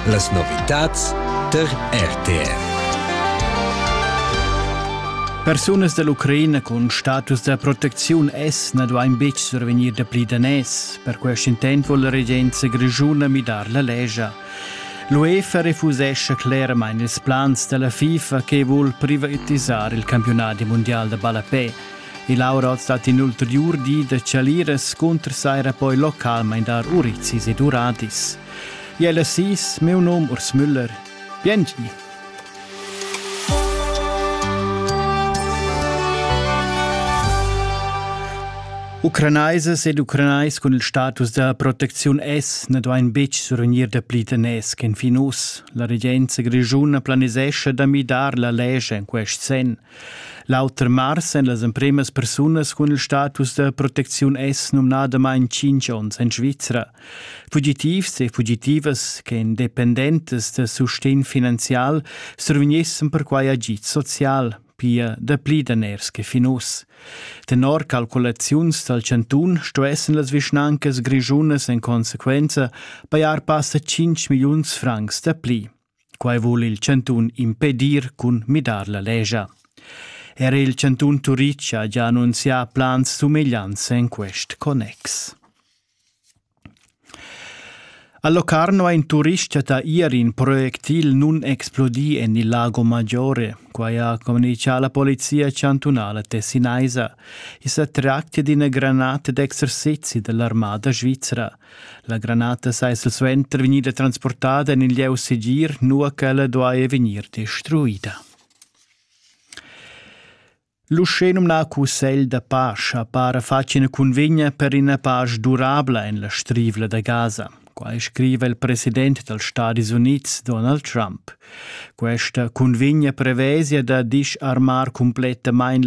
Las novitads tar RTF. Persunas dall'Ucraina cun status da protecziun S na duain betg survegnir dapli daners. Per quest intent vuol la regenza grischuna midar la legia. L'UEFA refusescha cleramain ils plans dalla FIFA che vul privatisar il campionadi mundial da ballapè. Il Aurot stat in ulteriur di da chaliras cunter saira poi localmain dar urizis ed uradis. Jella sis, meu nom Urs Müller. Biengi! Ucranaisas ed ucranais cun il status da protecziun S ne duain betg survegnir dapli daners ch'en fin uss. La regenza grischuna planisescha da midar la lege en quest sen. L'auter mars èn las empremas persunas cun il status da protecziun S numnadamain tschintg onns en Svizra. Fugitivs e fugitivas che èn dependentas da sustegn finanzial survegnessan perquai agid social, pia dapli daners che fin uss. Tenor calculaziuns dal chantun stuessen las vischnancas grischunas en consequenza pajar passa 5 milliuns francs dapli. Quai vul il chantun impedir cun midar la lescha. Er il chantun Turitg ha già annunzià plans sumegliants en quest connex. A Locarno ha in turist da ier in projectil nun explodì en il Lago Maggiore. Quai ha communichà la polizia chantunala tessinaisa. I sa tractia d'ina granata d'exercizi dell'armada svizra. La granata sei silsuenter vegnida transportada en il lieu segir, nua ch'ella duaja vegnir destruida. L'uschè numnà cussegl da pacha para fatg ina cunvegna per ina pasch durabla en la strivla da Gaza. Quai scriva il president dals Stati Unids Donald Trump. Questa cunvegna prevesia da disarmar cumplettamain